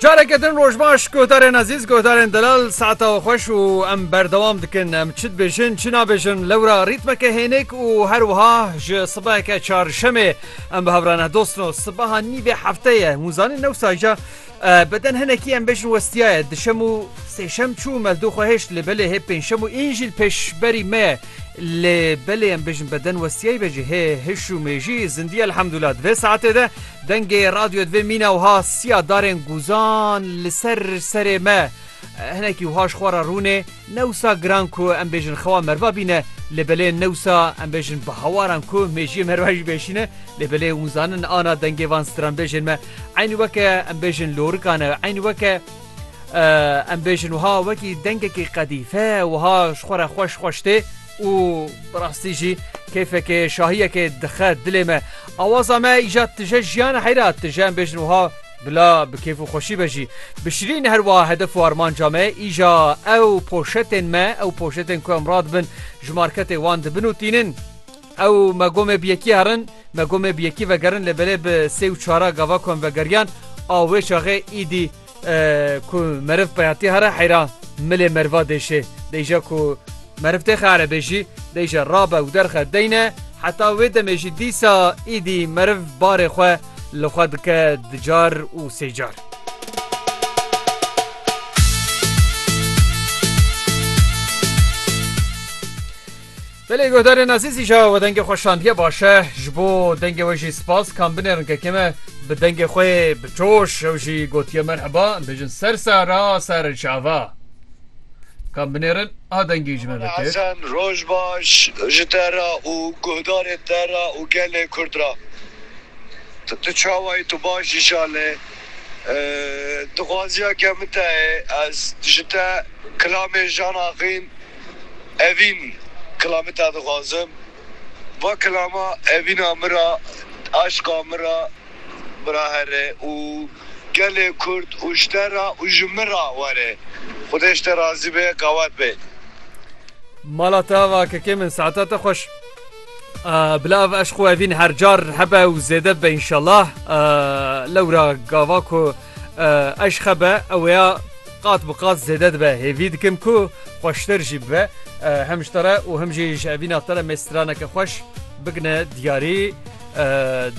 Careke din roj baş guhdarên ezîz guhdarên delal saeta we xweş û em berdewam dikin em çi dibêjin çi nabêjin lewra rîtmeke hênik û her wiha ji sibeheke çarşemê em bi hevra nehdostin û sibeha nîvê hefte ye hûn zanîn new saja beden hinekî em bêjin westiyaye dişem û sêşem çû mezdû xwe hêşt lê belê hê pênşem û înjîl pêşberî me lê belê em bêjin beden westiyayî bejî hê hiş û mêjî zindî elhemdûla divê saetê de Dengê radyo divê mîna wiha siya darên guzan li ser serê me hinekî wiha ji xwe re rûnê ne wisa giran ku em bêjin xewa merva bîne lê belê ne wisa em bêjin bi hewaran ku mêjiyê merva jî bêşîne lê belê hûn zanin ana dengê van stranbêjên me eynî weke em bêjin lorikan e eynî weke em bêjin wiha wekî dengekî qedîfe wiha ji xwe re xweş xweş tê û bi rastî jî keyfekê şahiyekê dixe dilê me. Awaza me îja tije jiyana heyra tije em bêjin wiha bila bi keyf û xweşî be jî. Bi şirîn her wiha hedef û armanca me îja ew poşetên me ew poşetên ku em radibin ji marketê wan dibin û tînin. Ew me gomê bi yekî herin me gomê bi yekî vegerin lê belê bi sê û çara gava ku em vegeriyan a wê çaxê îdî Ku meriv peyatî here heyra milê meriva dêşê. Deyja ku meriv têxe here bêjî deyja rabe û derxe deyne heta wê demê jî dîsa îdî meriv barê xwe li xwe dike di car û sê car. Belê guhdarên ezîzî ja we dengê xwe şandiye baş e. Ji bo dengê we jî spas kan binêrin kekê me. Bi dengê xwe yê bi coş ew jî gotiye merheba em bêjin ser sara ser çava. Kan binêrin a dengî ji me vekir. Hesen roj baş ji te re û guhdarên te re û gelê kurd re. Tu tu çawa yî tu baş jî şalê. Dixwaziya ke min te ye ez ji te kilamê Jean Aqin, Evîn, Kilamê te dixwazim. Va kilama evîna min ra, aşqa min ra bira here û gelê kurd û ji te ra û ji min ra were. Xwedê ji te razî be, qewet be. Mala te va kekê min, saeta te xweş. Bila ev eşq û evîn her car hebe û zêde bibe înşellah. Lewra gava ku. Eşqe be ew ya qat bi qat zêde dibe hêvî dikim ku xweştir jî bibe hem ji te re û hem jî ji evîna te re me straneke xweş bikine diyarî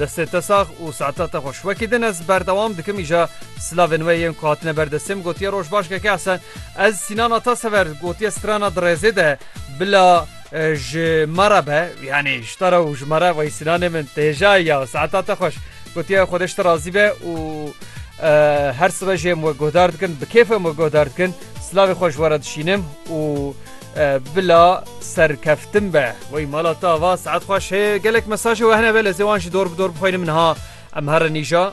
destê te sax û saeta te xweş wekî din ez berdewam dikim îja silavên we yên ku hatine ber destê min gotiye roj baş keke Hesen ez sînana te sever gotiye strana dirêzê de bila ji me re be yanî ji te re û ji me re wey sînanê min têja ya saeta te xweş Gotiye Xwedeş te razî be û her sibe jê em we guhdar dikin, bi kêf em we guhdar dikin, silavê xwe ji were dişînim û bila serkeftin be. Wey mala te ava saet xweş hê gelek mesajê we hene be lezê wan jî dor bi dor bixwînim niha em herin îja.